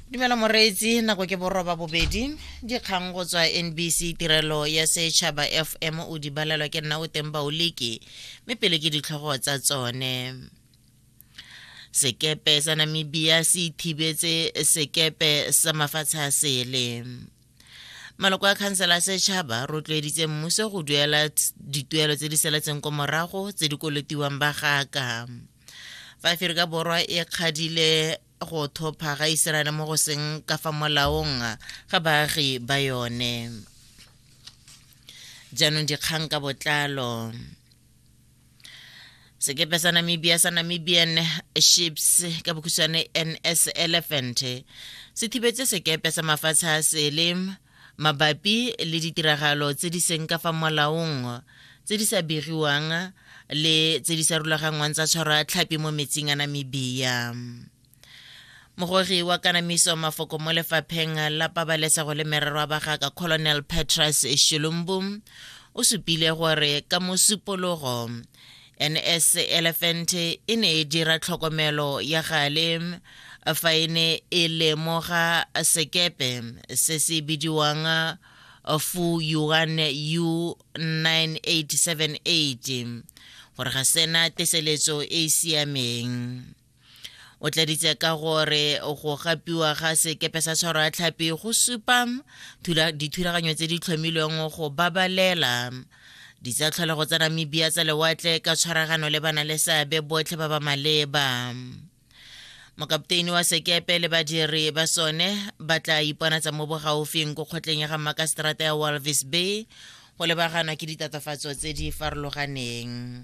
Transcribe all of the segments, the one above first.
dumela moreetsi nako ke boroba bobedi dikgang go tswa nbc tirelo ya setšhaba fm o di balelwa ke nna o teng baoleke mme pele ke ditlhogo tsa tsone sekepe sa namibia se ithibetse sekepe sa mafatshe a sele maloko a khansela a setšhaba rotloeditse mmuso go duela dituelo tse di seletseng ko morago tse di kolotiwang ba gaka fa aferika borwa e kgadile go thopha ga iseraele mo go seng ka fa molaong ga baagi ba yone jaanong dikgang ka botlalo sekepe sa namibia sa namibian ships ka bokhutshwane ns elephant se thibetse sekepe sa mafatshe a sele mabapi le ditiragalo tse di seng ka fa molaong tse di sa begiwang le tse di sa rulaganngwang tsa tshwara tlhapi mo metsing a Namibia. Mogogi wa kanamiso mafoko mo lefapheng la pabalesego le merero a bagaka Colonel Petrus Shilumbu o supile gore ka mosupologo ns elephant e ne e dira tlhokomelo ya gale fa e ne e lemoga sekepe se se bidiwang fu yuan u 9878 gore ga sena teseletso e e siameng o tladitse ka gore go gapiwa ga sekepe sa tshwaro ya tlhapi go supa dithulaganyo tse di tlhomilweng go babalela ditsatlholego tsa namibia tsa lewatle ka tshwaragano le bana le seabe botlhe ba ba maleba mokapteini wa sekepe le badiri ba sone ba tla iponatsa mo bogaufing ko kgotleng ya ga makaseterata ya walvis bay go lebaganwa ke ditatofatso tse di farologaneng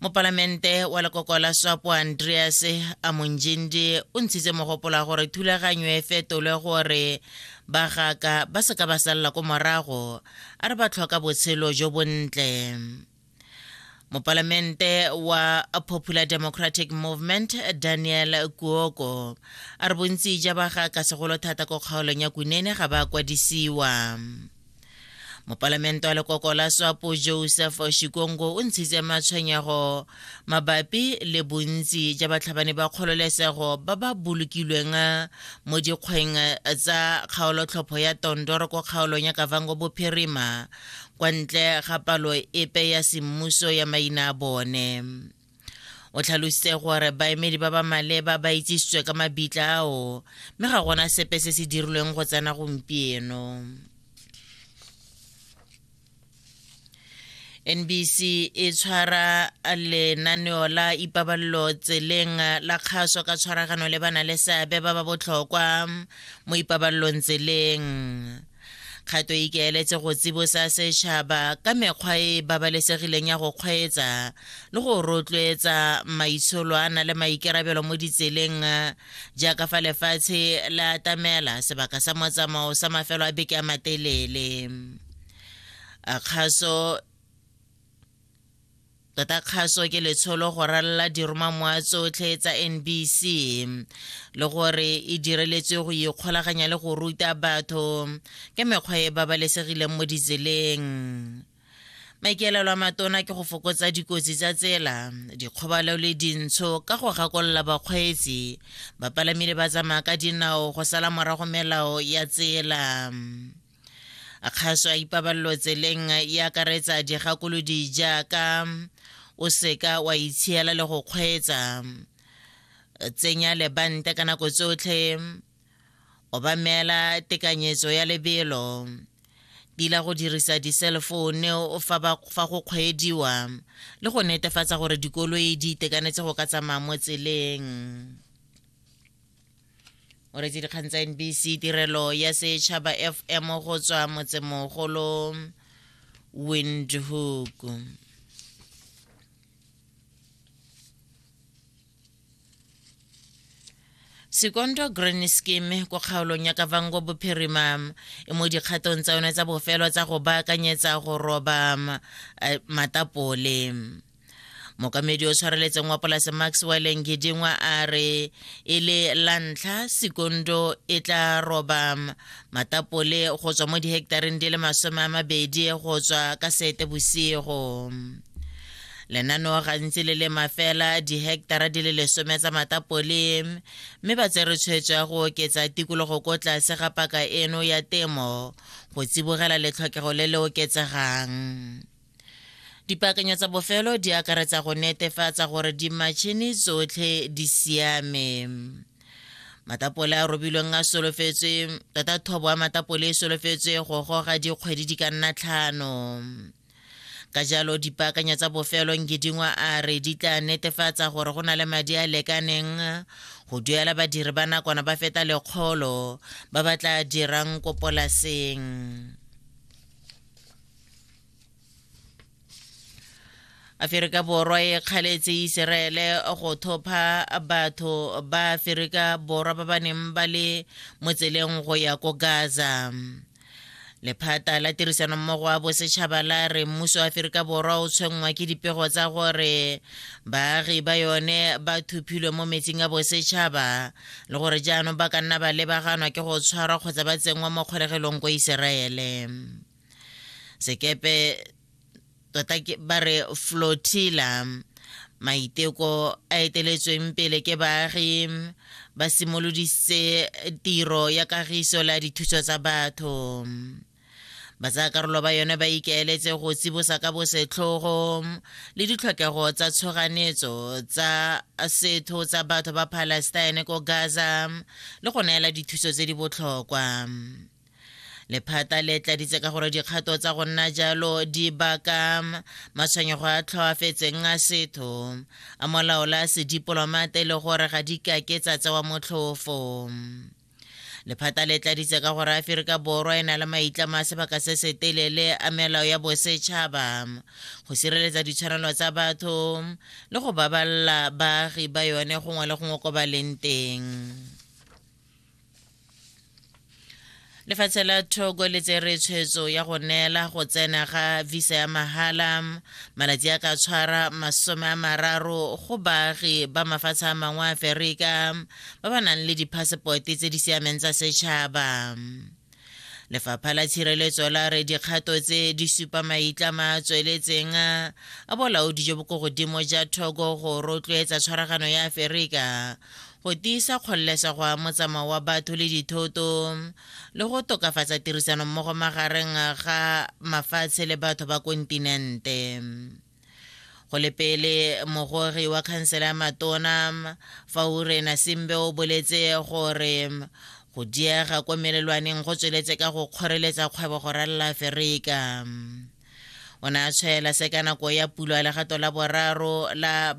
mopalamente wa lekoko la swapo andreas amonjindi o ntshitse mogopolo wa gore thulaganyo e fetolwe gore bagaka ba seka ba salela ko morago a re ba tlhoka botshelo jo bontle mopalamente wa popular democratic movement daniel kuoko a re bontsi ja bagaka segolo thata ko kgaolong ya kunene ga ba kwadisiwa mopalamente wa lekoko la swapo joseph shikongo o ntshitse matshwenyego mabapi le bontsi ja batlhabani ba kgololesego ba ba bolokilweng mo dikgweng tsa kgaolotlhopho ya tondoro ko kgaolong ya kavango bophirima kwa ntle ga palo epe ya semmuso ya maina a bone o tlhalositse gore baemedi ba ba maleba ba itsisitswe ka mabitla ao mme ga gona sepe se se dirilweng go tsena gompieno nbc e tshwara lenaneo la ipabalelo tseleng la kgaso ka tshwaragano le bana le seabe ba ba botlhokwa mo ipabalelong tseleng kgato e ikaeletse go tsibosa setšhaba ka mekgwa e babalesegileng ya go kgweetsa le go rotloetsa maitsholo a na le maikarabelo mo ditseleng jaaka fa lefatshe le atamela sebaka sa motsamao sa mafelo a beke a matelele kgaso Tota kgaso ke letsholo go ralala diromamwa tsotlhe tsa NBC le gore e direletswe go ikgolaganya le go ruta batho ka mekgwa e babalesegileng mo ditseleng. Maikaelelo a matona ke go fokotsa dikotsi tsa tsela, dikgobalo le dintsho ka go gakolola bakgweetsi, bapalami le ba tsamaya ka dinao go sala morago melao ya tsela. kgaso a ipabalelo tseleng e akaretsa digakolodi jaaka o seka wa itshiela le go kgweetsa tsenya lebante ka nako tsotlhe obamela tekanyetso ya lebelo tila go dirisa diselefoune fa go kgweediwa le go netefatsa gore dikoloi di itekanetse go ka tsamaya mo tseleng o retse dikgang tsa nbc tirelo ya setšhaba fm go tswa motsemogolo windhoek sekondo grand scheme ko kgaolong ya kavango bophirima e mo dikgatong tsa yone tsa bofelo tsa go baakanyetsa go roba eh, matapole mokamedi o tshwareletseng wa polase max wileng gedingwa a re e le la ntlha sekondo e tla roba matapole go tswa mo dihektareng di le masome a mabedi go tswa ka sete bosigo lenaneo gantsi le lema fela diheketara di le lesome tsa matapole mme ba tsere tshwetso ya go oketsa tikologo ko tlase ga paka eno ya temo go tsibogela letlhokego le le oketsegang Dipaakanyo tsa bofelo di akaretsa go netefatsa gore dimatšhini tsotlhe di siame. Matapole a robilweng a solofetswe tota thobo ya matapole e solofetswe go goga dikgwedi di ka nna tlhano. Ka jalo dipaakanyo tsa bofelo Ngidingwa a re di tla netefatsa gore go na le madi a lekaneng go duela badiri ba nakwana ba feta lekgolo ba ba tla dirang ko polaseng. aferika borwa e kgaletse iseraele go thopha batho ba aferika borwa ba ba neng ba le mo tseleng go ya ko gaza lephata la tirisanommogo wa bosetšhaba la re mmuso wa aferika borwa o tshwenngwa ke dipego tsa gore baagi ba yone ba thuphilwe mo metsing a bosetšhaba le gore jaanong ba ka nna ba lebaganwa ke go tshwarwa kgotsa ba tsenngwa mo kgolegelong ko iseraele sekepe tota ba re flotilla maiteko a eteletsweng pele ke baagi ba simoloditse tiro ya kagiso la dithuso tsa batho batsayakarolo ba yone ba ikaeletse go tsibosa ka bosetlhogo le ditlhokego tsa tshoganetso tsa setho tsa batho ba palestine ko gaza le go neela dithuso tse di botlhokwa lephata le tladitse ka gore dikgato tsa go nna jalo di baka matshwenyego a tlhoafetseng a setho a molao la sedipolomate le gore ga di kake tsa tsewa motlhofo lephata le tladitse ka gore aferika borwa e na le maitlamo a sebaka se se telele a melao ya bosetšhaba go sireletsa ditshwanelo tsa batho le go babalela baagi ba yone gongwe le gongwe ko ba leng teng lefatshe la thoko le tsere tshwetso ya go neela go tsena ga visa ya mahala malatsi a ka tshwara masome a mararo go baagi ba mafatshe a mangwe a aferika ba ba nang le diphasepote tse di siameng tsa setšhaba Lefapha la tshireletso la re dikgato tse di supa maitlama a tsweletseng a bolaodi jo bo ko godimo ja thoko go rotloetsa tshwaragano ya Aferika go tiisa kgololesego ya motsamao wa batho le dithoto le go tokafatsa tirisanommogo magareng ga mafatshe le batho ba kontinente go le pele mogori wa khansela ya matona faurena simbe o boletse gore go diega kwa melelwaneng go tsweletse ka go kgoreletsa kgwebo go ralala aferika o ne a tshwaela se ka nako ya pulo ya legato la boraro la